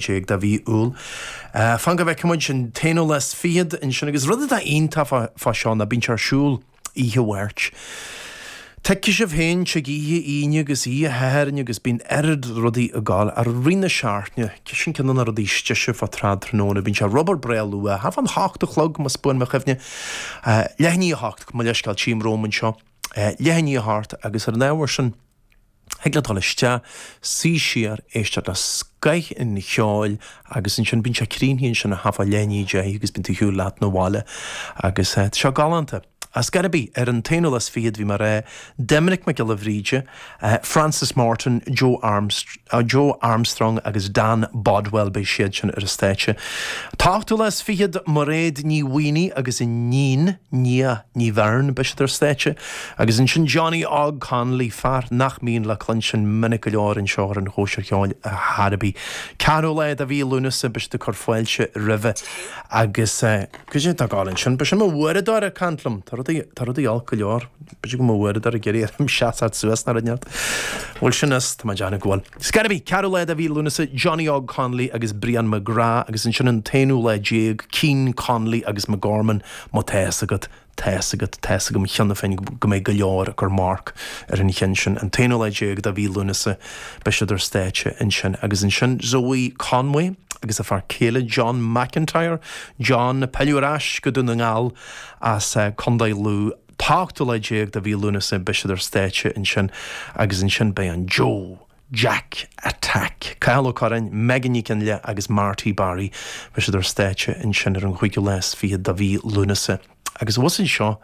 déag de mhí Iúil. Fan go bhfeice muid an t-aonú lá 's fichead ansin. Agus rud atá iontach fá seo ná bíonn sé ar siúl oíche Mháirt. Tuigfidh sibh féin, tig oíche Aoine agus oíche Shathairn agus bíonn oiread rudaí ag gabháil ar aghaidh deireadh na seachtaine, sin ceann de na rudaí is deise fá Trad Tráthnóna. Bíonn sé ar obair breá luath, thart fán hocht a chlog más buan mo chuimhne. Leath i ndiaidh a hocht, mo leithscéal, tchím romham anseo. Leath i ndiaidh a hocht agus ar an ábhar sin, Thig leat dul isteach, suí siar, éisteacht le scoith an cheoil agus ansin bíonn sé críochnaithe ansin ag tarraingt ar leath i ndiaidh a deich agus bíonn tú ag siúl leat na bhaile agus tá sé galánta. Ar scor ar bith, ar an t-aonú lá 's fichead bhí mé a rá, Doimnic Mac Giolla Bhríde, Frances Morton, Joe Joe Armstrong agus Dan Bodwell, beidh siad sin ar an stáitse. T-ochtú lá 's fichead, Mairéad Ní Mhaonaigh agus a hiníon, Nia Ní Bheirn, beidh siad ar stáitse, agus ansin Johnny Óg Connolly, fear nach mbíonn le cluinstin minic go leor anseo ar an Chóisir Cheoil ach ar scor ar bith. 4ú lá de mhí Lúnasa, beidh siad ag cur fáilte roimhe, agus goidé atá ag gabháil ansin? B'shin mo uaireadóir ag caint liom! Tá rudaí, tá rudaí olc go leor. B'fhéidir go bhfuil mo uaireadóir ag iarraidh orm seasacht suas, nach raibh neart? Bhuel sin is, tá mé ag déanamh go bhfuil. Scor ar bith, 4ú lá de mhí Lúnasa, Johnny Óg Connolly agus Brian McGrath, agus ansin an t-aonú lá déag, Keane, Connolly agus McGorman, má tá a fhios agat, tá a fhios agat, tá a fhios agam cheana féin go mbeidh go leor ag cur marc ar an cheann sin, an t-aonú lá déag de mhí Lúnasa, beidh siad ar stáitse ansin. Agus ansin Zoë Conway agus a fear céile John McIntyre, John ag pilleadh ar ais go Dún na nGall as Contae Lú, 18 lá de mhí Lúnasa beidh siad ar stáitse ansin agus ansin beidh an Joe Jack Attack, Cathal Ó Curráin, Megan Nic Fhionnghaile agus Marty Barry, beidh siad ar stáitse ansin ar an gcúigiú lá is fiche de mhí Lúnasa. Agus pas anseo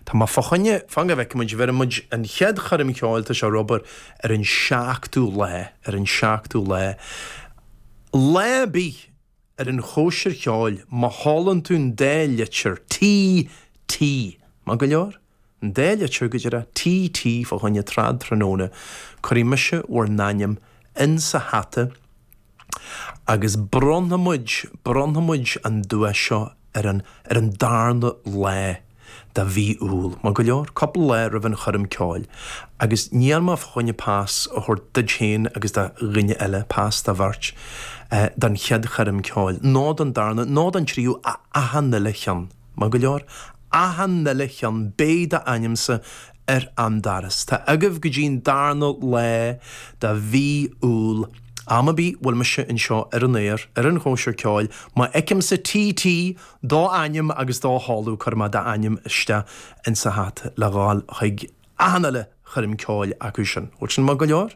atá agam fá choinne, fan go bhfeice muid, abair muid an chéad choirm cheoil, tá sé ar obair, ar an seachtú lá, ar an seachtú lá, lá bídh. ar an chóisir cheoil, má sheolann tú an dá litir T, T, maith go leor, an dá litir go díreach T, T, fá choinne trad tráthnóna, cuirfidh mise bhur n-ainm in sa hata agus bronnfaidh muid, bronnfaidh muid an duais seo ar an ar an darna lá de Mhí Iúil, maith go leor, cúpla lá roimh an choirm ceoil, agus níl mé chun pas a thabhairt duit féin agus do dhuine eile, pas do bheirt, don chéad choirm ceoil, nó don darna, nó don tríú, achan uile cheann, maith go leor, achan uile cheann, beidh d'ainmse ar an daras. Tá agaibh go dtí'n darna lá de mhí Iúil, am ar bith bhfuil mise anseo ar an aer, ar an gcóisir ceoil, má fheicimse TT, d'ainm agus do sheoladh, cuirfidh mé d'ainm isteach insa hata le ghabháil chuig achan uile choirm ceoil acu sin. Bhfuil sin maith go leor?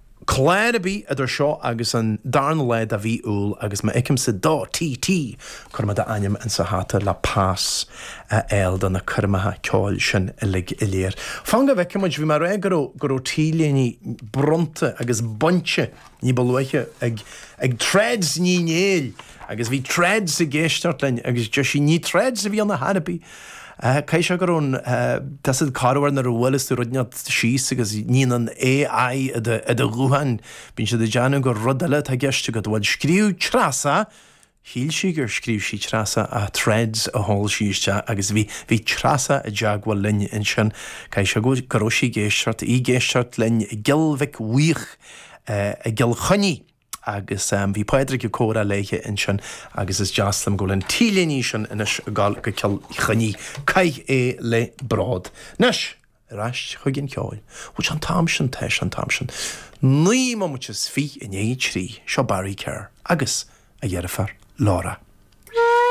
Clár ar bith idir seo agus an darna lá de mhí Iúil agus má fheicimse do TT, cuirfidh mé d'ainm insa hata le pas a fháil do na coirmeacha ceoil sin uilig go léir. Fan go bhfeicimid, bhí mé ag rá go raibh t-léine bronnta agus bainte ní ba luaithe ag Threads Ní Néill agus bhí Threads ag éisteacht linn agus deir sí, ní Threads a bhí ann ar chor ar bith! Caithfidh sé go raibh an, tá a fhios agat corruair nuair a bhuaileas tú rud inteacht síos agus níonn an A.I. i do ghuthán. Bíonn siad ag déanamh gur rud eile atá i gceist agat. Bhuel, scríobh Treasa, shíl sí gur scríobh sí Treasa ach Threads a sheol sí isteach agus bhí, bhí Treasa i dteagmháil linn ansin. Caithfidh sé go raibh sí ag éisteacht, í ag éisteacht linn i gCill Mhic Bhúith i gCill Chainnigh. agus bhí Pádraig ag comhrá léithe ansin agus is deas liom go bhfuil an t-léine sin anois ag dul go Cill Chainnigh. Caith é le bród. Anois, ar ais chuig an cheol. Bhuel, sé an t-am sin, tá sé an t-am sin. Naoi mbomaite is fiche i ndiaidh a trí, seo Barry Kerr agus a dheirfiúr Laura.